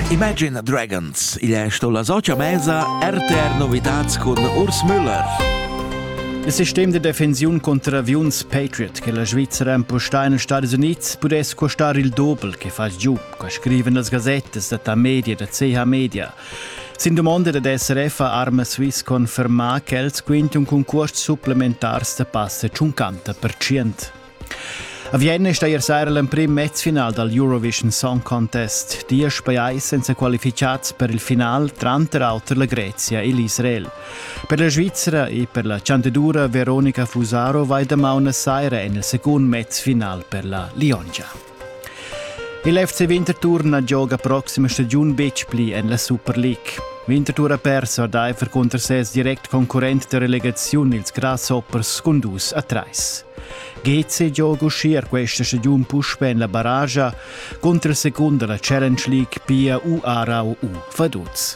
Imagine Dragons, igl è sto la socia mesa RTR Novitats cun Urs Müller. Il sistem de defensiun contra aviuns Patriot che la Svizzera impostà in Stati Uniti pudess costar il doppel che fa giù, co scriven las gazettas da ta media da CH Media. Sin domanda da SRF ha Arma Swiss confermà che els quint un concurs supplementars da passa 50%. A Vienna è steir saira l'emprim mezfinal dal Eurovision Song Contest. Diesch pajais senza qualificads per il final, tranter auter la Grezia e l'Israel. Per la Svizzera e per la chanteddura Veronica Fusaro vai damaun a saira en il secund mezfinal per la Liongia. Il FC Winterthur na gioga proxima stagiun betg pli en la Super League. Winterthur ha perso ordaifer cunter ses direct concurrent da relegaziun ils Grasshoppers cun dus a trais. GC gioga uschia questa stagiun puspè en la barragia cunter secunda la Challenge League pia u Arau u Vaduz.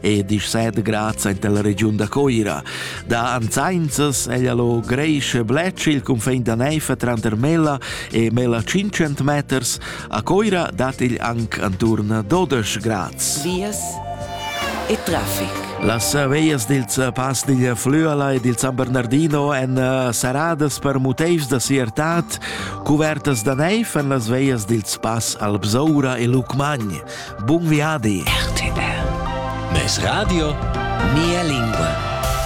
e disset graz in della regiun da Coira. Da anzainzas ella lo greische blec il confin da neifa tranter Mela e Mela 500 meters, a Coira dat il anc anturna 12 grads. Vias e traffic. Las veias dils pas digl Flüala e dil San Bernardino en eh, saradas per muteivs da siertat, cuvertas da neif en las veias dils pas Albzoura e Lucmagn. Bun viadi! RTR. Mes radio, mia lingua.